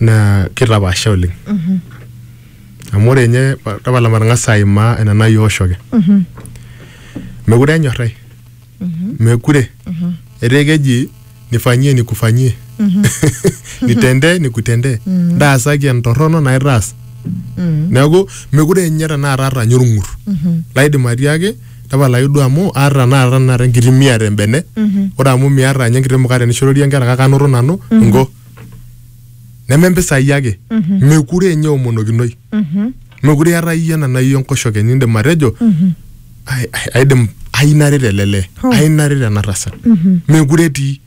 naa kitapaasha oleng amu ore ninye tapala matang'asa aimaa ena nayioshoki mekure enyorrai mekure etaa keji nifanyie nikufanyie nitendee nikutendee ntaasaki entorrono naitaas neeku mekure ninye tenakata aata ninye orng'ur laidim atiaki tapalaki duo amu aata tenakata tenakata enkiti miata embene ore amu miata ninye enkiti mukate nishororie inkera kake anoto nanu inko neme mpisai ake mekure enye omonokinoi mekure eeta iyie ena nai enkoshoke nindim atejo "Ai- ai- aidim ai naret ele lee Hoo. ai naret ena tasat mekure etii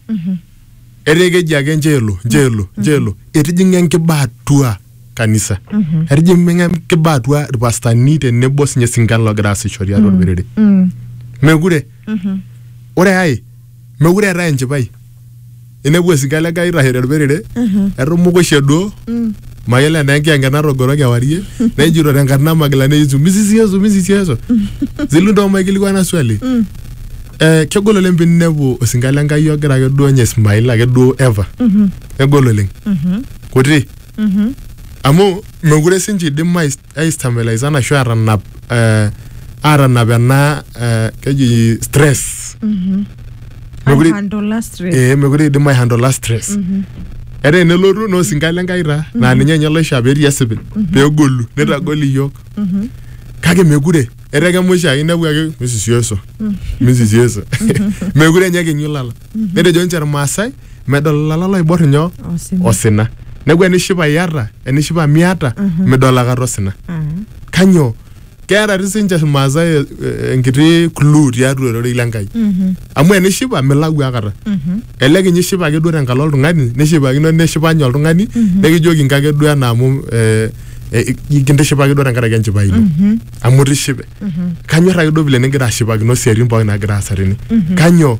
etaa keji ake njeelo njeelo njeelo etijing'a enkiba atua kanisa etijing'a enkiba atua irpastani tenebo sinye sinkan logira aasisho tiatua orperere mekure ore ai mekure eetae enchipai inepu esika ele gai itasho telperere etumukushe duo mayiolo enaa enkiyange natogoro kewarie nejito tenkarna e magilani e yesu misisi yesu misisi yesu zilu ntoo maikilikuana swali eh, kegol oleng pinepu osinka le nkai ogira ake duo nye ismail ake duo ever kegol oleng kuti amu mekure sinche idim ai ai stabilize ashu atanap eh, atanap ena eh, keji stress Mekure- Handle stress. ee mekure idim aihandola stress etaa enelotu naa osinka le Nkai taa naa ninye ninye loishaa petii esipil pegolu nitagol iyiok kake mekure etaa kemusha ake inepu ake misisieso misisieso mekure enye kinyu lala netejo ninche irmaasai medol ilala loibor nyoo Osina. osina neeku enishipa iata enishipa miata midol akata osina Mm. kanyoo keeta ti sinche irmaasai eh, eh, enkiti clue tiatua ororei lenkai Mhm. amu enishipa milau akata Mhm. elelek inye ishipa ake duo tenkalo oltung'ani nishipakino neshipa nye oltung'ani nikijoki nkake duo ena amu eh, eh, kintishipa ake duo tenkaraki enchipai ino Mhm. amu tishipe kanyor ake duo vile nigira ashipakino siatin pookin nagira aasa tene kanyoo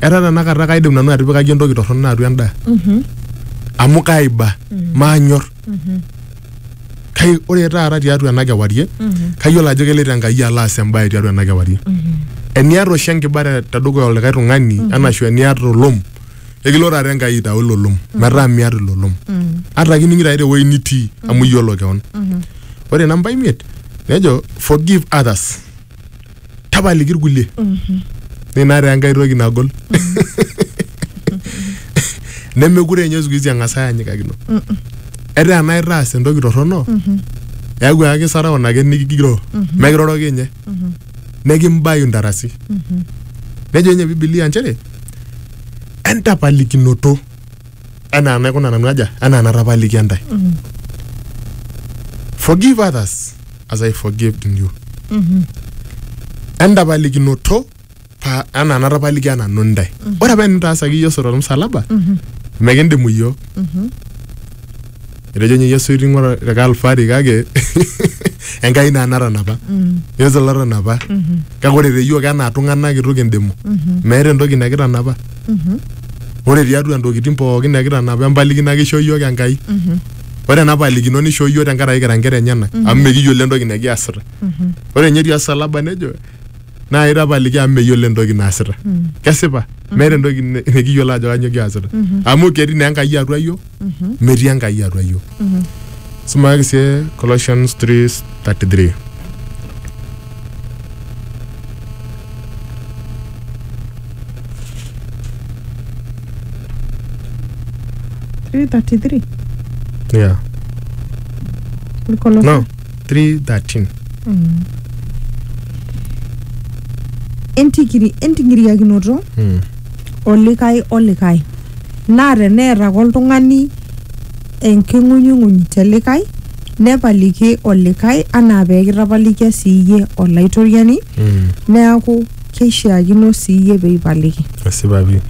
etaa tenakata kaidim nanu atipikaki entoki torrono atua endaa amu kaiba maanyor kai ore taata tiatua ena kewarie kayiolo ajo keloito Enkai alo aas embae tiatua ena kewarie eniata oshi enkiba te- tedukuya olikae tung'ani anashu eniata olom ekilo taata Enkai aitau ilo lom metaa miata ilo lom ata kining'ito ake tewueji nitii amu iyiolo keon ore namba imiet nejo forgive others tapaliki irkulie nina taa enkae toki nagol nemekure ninye siku hizi eng'as ayanyikakino etaa enaa itaas entoki torrono eeku ake kisarau ina ake nikigiroo mekiroroki ninye nekimbayu intarasi nejo ninye bibilia nchere entapalikinoto enaa enaikuna nanu aja enaa enatapalikia intae forgive others as I forgave in you. Entapalikinoto pa anaa natapalikia nanu ntae. Ore apa enitaasaki Yesu tormusalaba, mekindimu iyiook. Etejo ninye Yesu iting'o te Kalvari kake Enkai naa natanapa. Yesu lotanapa. Kake ore te iyiook enaa tung'anak itu kindimu. Meeta entoki nekitanapa. Ore tiatua ntokitin pookin nekitanapa empalikino ake ishoo iyiook Enkai. ore ena palikino nishoo iyiook tenkaraki kira nkera enyenak amu mekiyiolo entoki nikiasita ore ninye etii osalaba nejo naa itapaliki amu meyiolo entoki naasita kesipa meeta entoki ni- nikiyiolo ajo kanyioo kiasita amu ketii naa enkai atua iyiook metii enkai atua iyiook sumakaki sie Colossians 3:33 Colossians 333 yeah Kolosai. no 313 Entikiri, entingiriakinoto mm. olikae olikae naa teneeta ake oltung'ani enking'unyung'uny te likae nepaliki olikae anaa pee kitapalikia sii iyie olaitoriani Mm. neaku keishiakino sii iyie pee ipaliki. esipa pii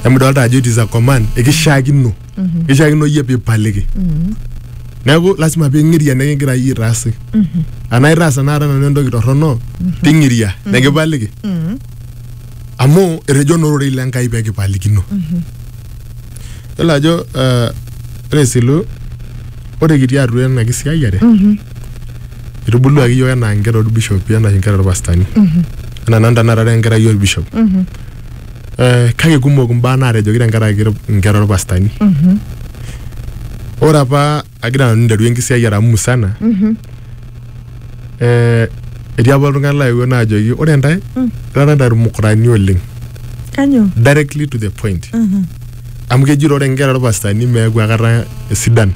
amu idolta ajo it is a command ekishiakino kishiakino iyie piipaliki neeku lasima ping'iria enikigira iyie aitaasi anaa itaasa naata nanu entoki torrono ting'iria nikipaliki amu etejo naa ororei lenkai pekipalikino yiolo ajo eh, ore esilu Ore kitii atua ena kisiayiare, itubuluaki iyiook enaa nkera orbishopi enaa nkera orpastani. Enaa nanu tenakata ara enkerai orbishop. Eh, kake kumok imbaa naatejoki tenkaraki inkera orpastani. Ore apa agira nanu aiteru enkisiayiare amu musana, eh, etii apa iltung'anak laetuo naajoki ore intae, irara intae irmukurani oleng. Kanyoo? Directly to the point. amu keji ore inkera orpastani meeku akata sidan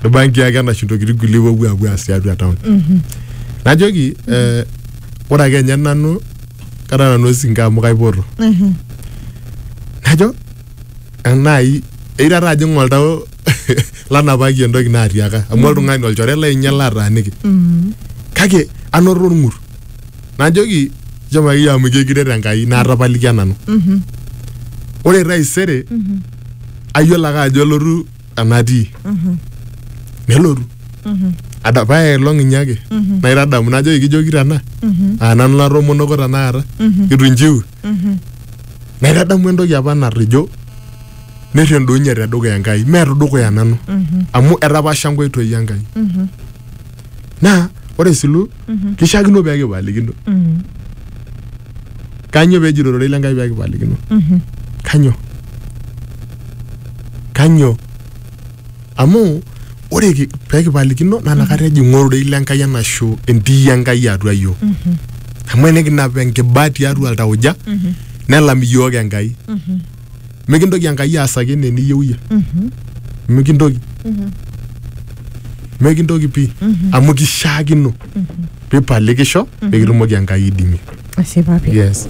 irbanki ake enash intokitin kulie wopuo apuo aas tiatua town najoki eh, ore ake enye nanu kara nanu osinka amu kaipoto najo enai eirara ajing oltau lanapaki entoki naatiaka amu oltung'ani olchore lainye lataaniki kake anoto orng'ur najoki shomo akeyie amu ijo ekiret enkai naatapalikia nanu Mhm. ore taisere Mhm. ayiolo ake ajo elotu enatii Mhm. nelotu Mhm. Ada- paya elong inye ake Mhm. naitadamu najoki kijoki tena Mhm. aa nanu natoomonoko tenakata Mhm. itu injiu Mhm. naitadamu entoki apa narrijo nirridounye tedukuya enkai mee tedukuya nanu Mhm. amu etapasha nkoitoi enkai Mhm. naa ore isilu kishiakino pee kipalikino Mm. kanyo pee ejito ororei lenkai pee kipalikino Mhm. kanyo kanyo amu ore ki- pee kipalikino naa nakata ejing'u ororei lenkai enashu entii enkai atua iyiook Mhm. amu enikinap enkiba tiatua iltauja Mhm. nelam iyiook enkai Mhm. mikintoki enkai aasaki enaa eniyieu iyie mikintoki mikintoki pii amu kishaakino pipalikisho pikitumoki enkai aidimie Ashipa pii. yes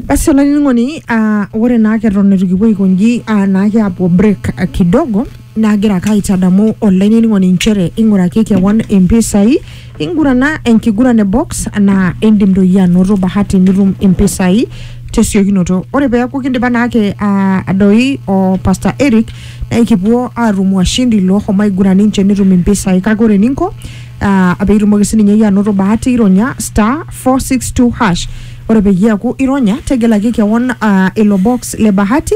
Basi olainining'oni, ah, ore naake eton eitu kipuo aikonji ah, naake apuo break ah, kidogo Naagira ake aitadamu olainining'oni nchere ing'uraki kewon impisai, ingurana enkiguran e box naa indim doi iyie anoto bahati nitum impisai tesiokinoto. Ore peeku kindipa naake aa doi o Pastor Eric naa ekipuo aatum washindi looshomo aiguran ninche netum impisai kake ore eninko aa piitumoki sininye iyie anoto bahati ironya star, four, six, two, hash. Ore peyie eeku ironya tegelaki kewon aa ilo box le bahati